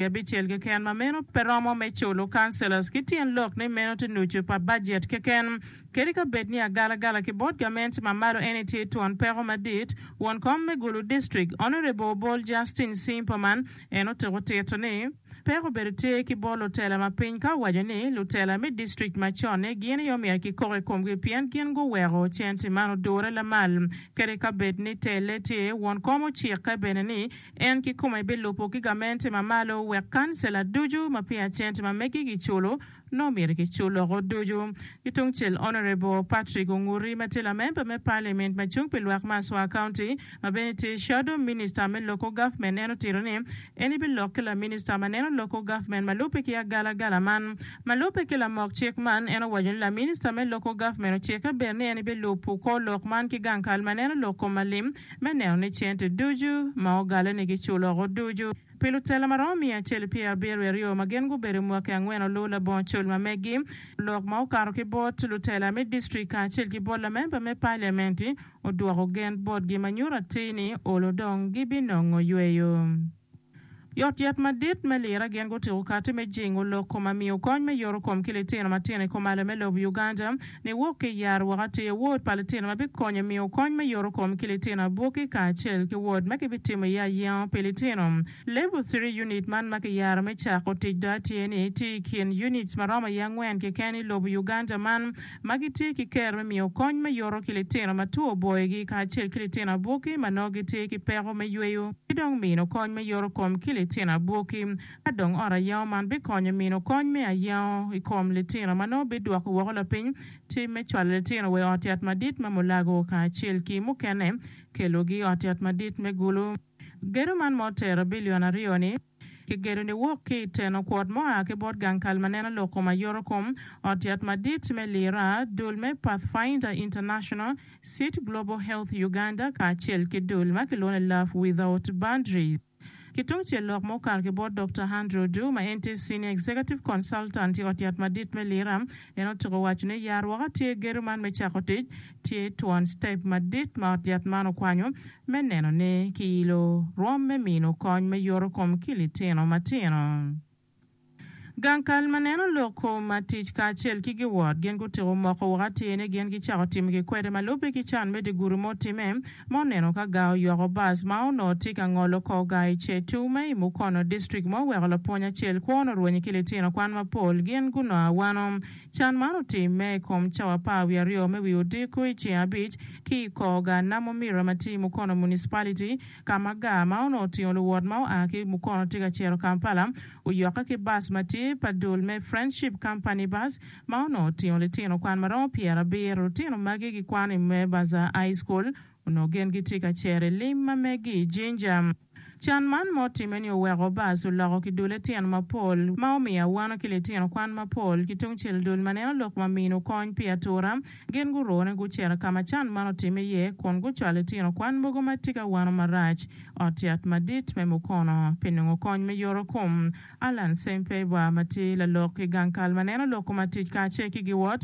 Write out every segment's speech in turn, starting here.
abicel keken ma meno pe romo me culo councillors ki tyen lok ni meno tye nucu pa budget keken. Kadi ka bed ni agalagala ki bot gament ma malo eni tye twon peko madit, won kom me Gulu District, Honourable Obol Justine Simperman en otuko tito ni, Peko obedo tye ki bot lutela ma piny ka owaco ni lutela me district ma con-ni gin aye omyero kikok i komgi pien gin guweko cente man odure lamal kadi ka bed ni telle tye won kom ocikke bene ni En kikome bilubo ki gamente ma malo wek kancela ducu ma peya cente ma megi giculo nongo myero gicul loko ducu. Ki tungcel Honourable Patrick Onguri ma tye lamemba me Parliament ma cung pi lwak me Aswa County ma bene tye Shadow Minister me Local Government en otito ni en ibi lok ki la Minister ma neno Local Government ma lubbe ki agalagala man ma lubbe ki lamok cik man en owaco ni la Minister me Local Government ocikke bed ni en ibi lubo kor lok man ki gang kal ma neno lok kom ma lim me neno ni cente ducu ma ogalleni giculoko ducu. Pi lutela ma romo miya acel pyera abiro i aryo ma gin gubedo mwaki angwen oluw labongo col ma megi, lok ma okato ki bot lutela me distrik kacel ki bot lamemba me paliamenti odwoko gen botgi ma nyuto atir ni olo dong gibinongo yweyo. Yotyet madit me lira gin gutyeko kati me jingo lok kom ma miyo kony me yoto kom ki litino matino i komalo me lobo Uganda ni wok ki i Arua ka tye wod pa litino ma bikonyo miyo kony me yoto kom ki litino abwoki kacel ki wod ma kibitimo iye ayengo pi litino Level Three Unit man ma kiyaro me cako tic do atye ni tye i kin units maromo iye angwen keken i lobo Uganda man ma gitye ki ker me miyo kony me yoto ki litino ma two oboyogi kacel ki litino abwoki ma nongo gitye ki peko me yweyo, ki dong mino kony me yoto kom ki litino abwoki. Ka dong ot ayango man bikonyo mino kony me ayango i kom litino ma nongo bidwoko woko lapiny tim me cwalo litino wa i ot yat madit ma mulago kacel ki mukene kelogi i ot yat madit me gulu. Gedo man ma otero bilion aryo-ni, Kigedo niwok ki i teno kwot mo a ki bot gang kal ma neno lok kom a yoto kom, ot yat madit me lira, dul me Pathfinder International, cit Global Health Uganda kacel ki dul ma kilwongo ni Love Without Boundaries. Ki tungcel lok ma okato ki bot Dokta Handro Du ma en tye Senior Executive Consultant i ot yat madit me lira, en otyeko waco ni, Yar woko atir gedo man me cako tic, Tye twon citep madit ma ot yat man okwanyo me neno ni kiyilo rwom me mino kony me yoto kom ki litino matino. Gang kal ma neno lok kom ma tic kacel ki giwot gin gutiko moko woko atir ni gin gicako timo kikwede ma lubbe ki can me dye gudo ma otimme ma oneno ka gar oyoko bus ma onongo tye ka ngolo kor gar i Chetu ma i Mukono District ma oweko lapwony acel kwone orwenye ki litino kwan mapol gin gunongo awano Can man otimme i kom cawa apar wiye aryo me wi odiko i ceng abic ki i kor gar namo Mira ma tye i Mukono Municipality ka ma gar ma onongo otingo luwot ma oa ki Mukono tye ka cito Kampala oyokke ki bus ma tye pa dul me Friendship Company Bus ma onongo otingo litino kwan ma romo pyera abiro. Lutino magi gikwano i Mwebaza High School onongo gin gitye ka cero i lim ma megi i Jinja. Can man ma otimme ni oweko bas oloko ki dule tyen mapol ma omiyo awano ki litino kwan mapol ki tungcel dul ma neno lok ma mino kony pi atura. Gin gurone gucito ka ma can man otimme iye kun gucwalo litino kwan mogo ma tye ka wano marac ot yat madit me Mukono pi nongo kony me yoro kom. Allan Sempebwa ma tye lalok ki gang kal ma neno lok ma tic kacel ki giwot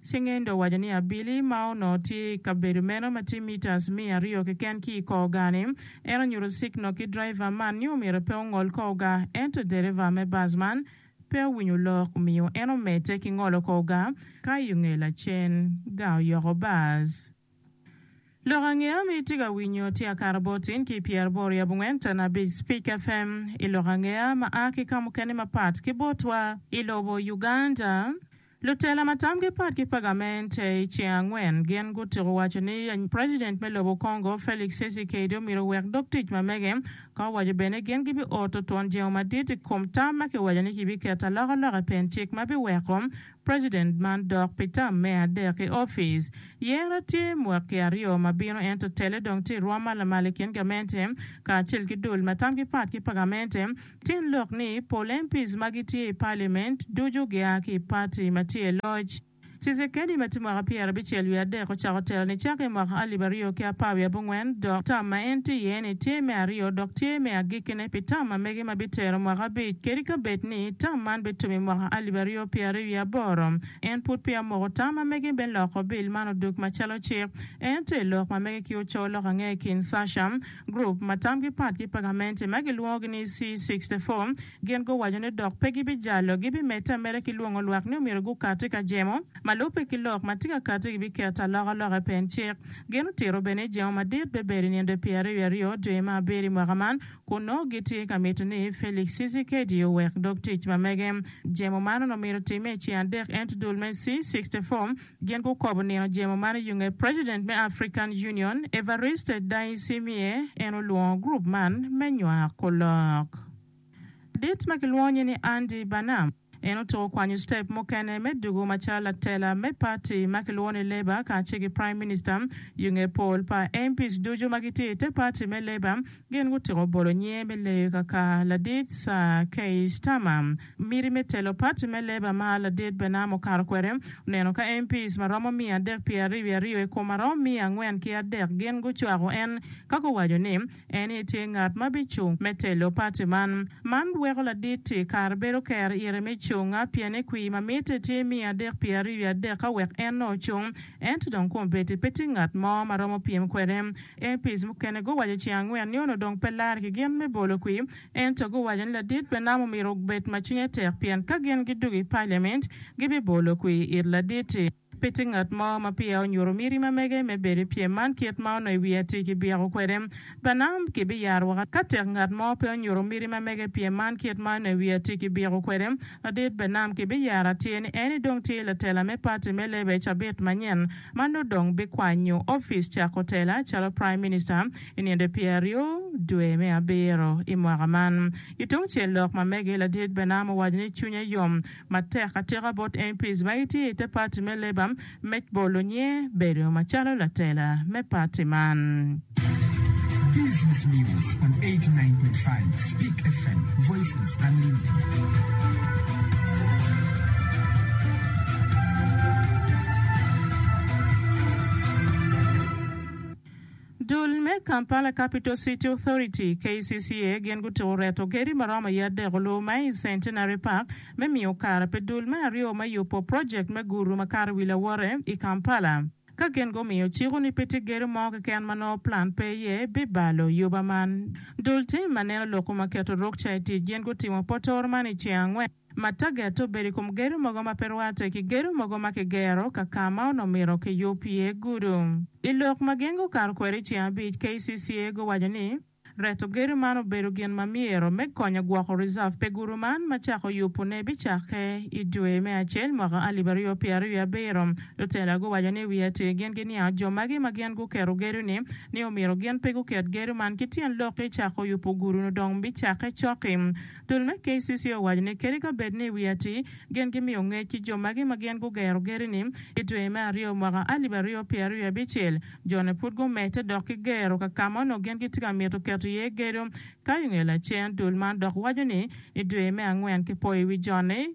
Cingendo owaco ni abili ma onongo tye i kabedo meno ma tye mitas miya aryo keken ki i kor gaa-ni, en onyuto sikno ki driver man ni omyero pe ongol kor gaa, ento dereva me bus man pe owinyo lok omiyo en omedde ki ngolo kor gaa ka i onge lacen gaa oyoko bus. Lok ange ami itye ka winyo tye akato botin ki pyera aboro yabo ngwen tana abic Speak FM i lok ange a ma a ki kamukene mapat ki botwa i lobo Uganda. Lutela ma tamgi pat ki pagamente i ceng angwen gin gutuku waco ni president me lobo Congo Felix Tshisekedi omyero owek dog tic ma mege ka owaco bene ni gin gibi oto twon jengo madit i kom tam ma kiwaco ni kibiketo alokaloka i pen cik ma biweko President man dok pi tam me adek i ofice. Yero tye mwaki aryo ma bino ento tele dong tye i rwom ma lamal i kin gamente kacel ki dul ma tamgi pat ki pa gamente. Tin lok ni pol MPs ma gitye i Parliament ducu gia ki i party ma tye i loc. Tshisekedi ma tye mwaka pyera abicel wiye adek ocako telo nicake i mwaka alip aryo ki apar wiye abongwen dok tam ma en tye iye ni tye me aryo dok tye me agikkine pi tam ma mege ma bitero mwaka abic kadi ka bed ni tam man bitum i mwaka alip aryo nyo pyeraryo wiye aboro, en pud peya omoko tam ma mege me loko bil man odug macalo cik. En tye i lok ma mege ki oco lok ange i kin Sasha, gurup ma tamgi pat ki pagamente ma gilwongogi ni C64, gin guwaco ni dok pe gibijalo, gibimedde ameda ki lwongo lwak ni omyero gukati ka jemo ma lubbe ki lok ma tye ka kati gibiketo aloka loka i pen cik. Gin otito bene ni jemo madit bibedo i nino dwe pyeraryo wiye aryo dwe me abiro i mwaka man, kun nongo gitye ka mito ni Felix Tshisekedi owek dog tic ma mege. Jemo man onongo myero otimme i ceng adek ento dul me C-64 gin gukobo nino jemo man i yunge President me African Union, Evariste Ndayishimiye en olwongo group man me nywako lok. Ladit ma kilwongo nyinge Andy Burnham, En otuko kwanyo citep mukene me dugo macalo latela me pati ma kilwongo ni Labour kacel ki Prime Minister. I nge pol pa MPs ducu ma gitye i te pati me Labour, gin gutyeko bolo nyinge me leyo kaka ladit Sir Keir Starmer. Miti me telo pati me Labour ma ladit Bernarm okato kwede oneno ka MPs ma romo miya adek pyeraryo wiye aryo i kom aromo miya angwen ki adek gin gucwako en ka guwaco ni, En aye tye ngat ma bicung me telo pati man. Man weko ladit-ti kare bedo ker ire me cunga pien ni kwir ma mitte tye miya adek pi ariyo i adek ka wek en nongo ocung. Ento dong kun bedi pe tye ngat mo ma romo pyem kwede. MPs mukene guwaco ceng angwen ni onongo dong pe ler ki gin me bolo kwir, ento guwaco ni ladit me nam omyero obed ma cwinye tek pien ka gin gidwogo i Parliament gibibolo kwir it ladit-ti. Pe tye ngat mo ma peya onyuto miti ma mege me bedo i pyem man kit ma onongo i wi atir kibyeko kwede. Branham kibiyaro woko. Ka tek ngat mo pe onyuto miti ma mege i pyem man kit ma onongo i wi atir kibyeko kwede, Ladit Branham kibiyaro atir ni en-ni dong tye latela me pati me lebe i cabit manyen ma nongo dong bikwanyo opic cako tela calo Praim Minista i nino pyeraryo dwe me abiro i mwaka man. Ki tungcel lok ma mege, Ladit Branham owaco ni cwinye yom matek atika bot MPs ma gitye i te parti me Labour me bolo nyer bedo macalo latela me parti man. Dul me Kampala Capital City Authority, KCCA, gin gutuko reto gedi ma romo i adek olur ma i Centenary Park me miyo kare pi dul me aryo me yubo project me guru ma kato i wi lawote i Kampala ka gin gumiyo ciko ni pe tye gedo mo keken ma nongo plan pe iye pi balo yuba man. Dul tim ma neno lok kom ma keto rukca i tic gin gutimo potoro man i ceng angwen. ma taget obedo i kom gedo mogo ma pe rwatte ki gedo mogo ma kigero ka ka ma onongo myero kiyub iye gudo. I lok ma gin gukato kwede i ceng abic, KCCA guwaco ni, Reto gedo man obedo gin ma myero me konyo gwoko reserve pe gudo man ma cako yubone bicakke i dwe me acel mwaka alip aryo pyera aryo i abiro. Lutela guwaco ni wiye atir gin giniango jo magi ma gin guketo gedo-ni ni omyero gin pe guket gedo man ki tyen lok-ki cako yubo gudo-nu dong bicakke cok-ki. Dul me KCC owaco ni kadi ka bed ni wi atir gin gimiyo ngec ki jo magi ma gin gugero gedo-ni, i dwe me aryo mwaka alip aryo pyera aryo abicel, jone pud gumedde dok ki gero ka ka ma onongo gin gitye ka mito keto iye gedo. Ka i nge lacen, dul man dok waco ni i dwe me angwen kipoyo i wi jone.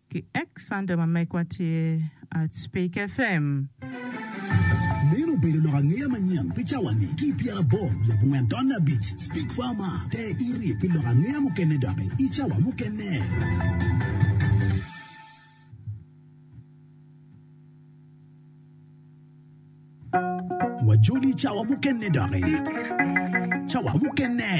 Ki ek Sunday ma megwa tye at Spik FM. Meno obedo lok angeya manyen pi cawa-ni ki i pyeraboro labongwen taun abic. Spik FM, te iri pi lok angeya mukene doki i cawa mukene. Wajodi i cawa mukene doki. Cawa mukene.